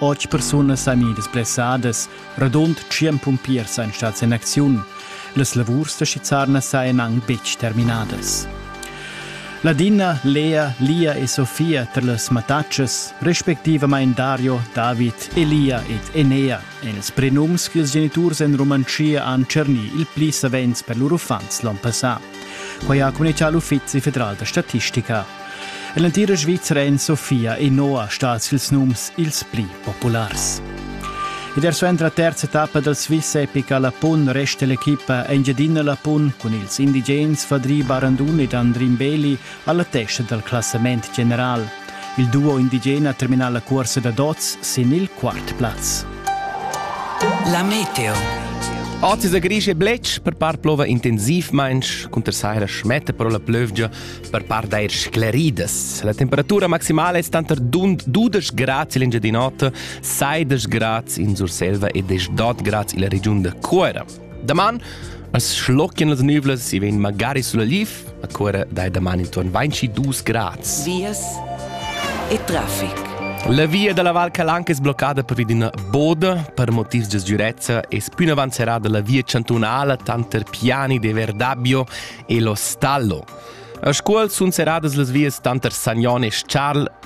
Otg persunas san gnir blessadas, radund tschien pumpiers ein stats in acziun. Las lavurs da Schizzarna sajan anc betg terminadas. Ladina, Lea, Lia e Sofia tar las mattatschas, respectivamain Dario, David, Elia ed Enea, èn ils prenums ch'ils geniturs en Rumantschia han tschernì il pli savens per lur uffants l'onn passà. Quai ha communitgà l'Uffizi federal da statistica. En l'entira Svizra èn Sofia e Noa stads ils nums ils pli populars. Ed er suenter la terza etappa dal Swiss Epica Lapun resta l'equipa Engiadina Lapun cun ils indigens Fadri Barandun ed Andrin Beli alla testa dal classament general. Il duo indigen ha terminà la cuorsa da dots sin il quart plaz. La meteo. Oggi sa grisce blech per par plova intensivmensch cunter saira schmetta però la plövgia per par d'air scleridas. La temperatura maximale è stata 12 grad in l'Engiadinota, 16 grad in Surselva e 18 grad in la regiun da Cuera. Daman as schlocchien las nüvlas e vegn magari sulla lif, a cuora dai daman intorn 22 grads. Vias e trafic. La via dalla Val Calanca è sbloccata per una boda per motivi di sicurezza e più in avanti será dalla via cantonale tanter Piani de Verdabio e lo Stallo. A scuol sun serradas las vias tanter Sagnone e Charles